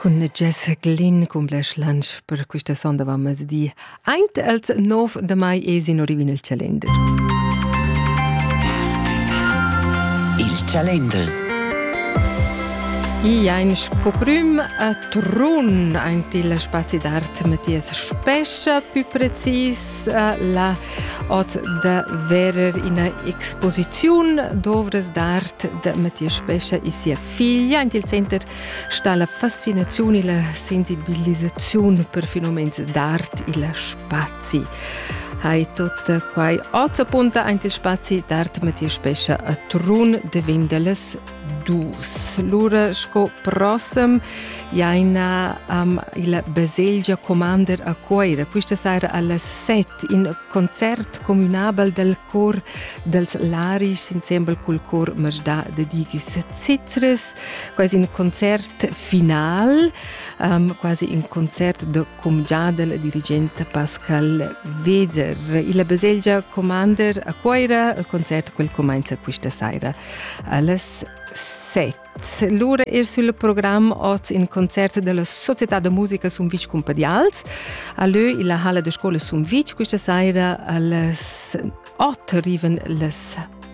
Cun Jessica Lin cumblesch lunch per questa sonda va di Eint els 9 de mai es in orivin il Chalender. Il Chalender I ein scoprüm a Trun aint il spazi d'art Mathias Spescha, più precis la ot da verer ina exposiziun dovres d'art de Mattia Spescha e sia figlia. In il center sta la fascinazione e la sensibilizzazione per fenomens d'art e la spazi. Hai tot quai oz appunta ein spazi d'art Mattia Spescha a Trun de Vindeles dus. Lura sco prossem jaina um, il baselgia Commander a Cuoira. Questa sera alle 7 in concert communabel del cor dels Larisch insieme col cor Majda de Digis Cizres. Quasi un concert final, um, quasi un concert de cumgiadel e dirigent Pascal Weder. Il baselgia Commander a Cuira, il concert quel comincia questa sera alles 7. Lura er sul programm oz in concert della Società de Musica Sumvitg Cumpadials a leu illa Halle de Scuola Sumvitg questa sera alles 8 arriven les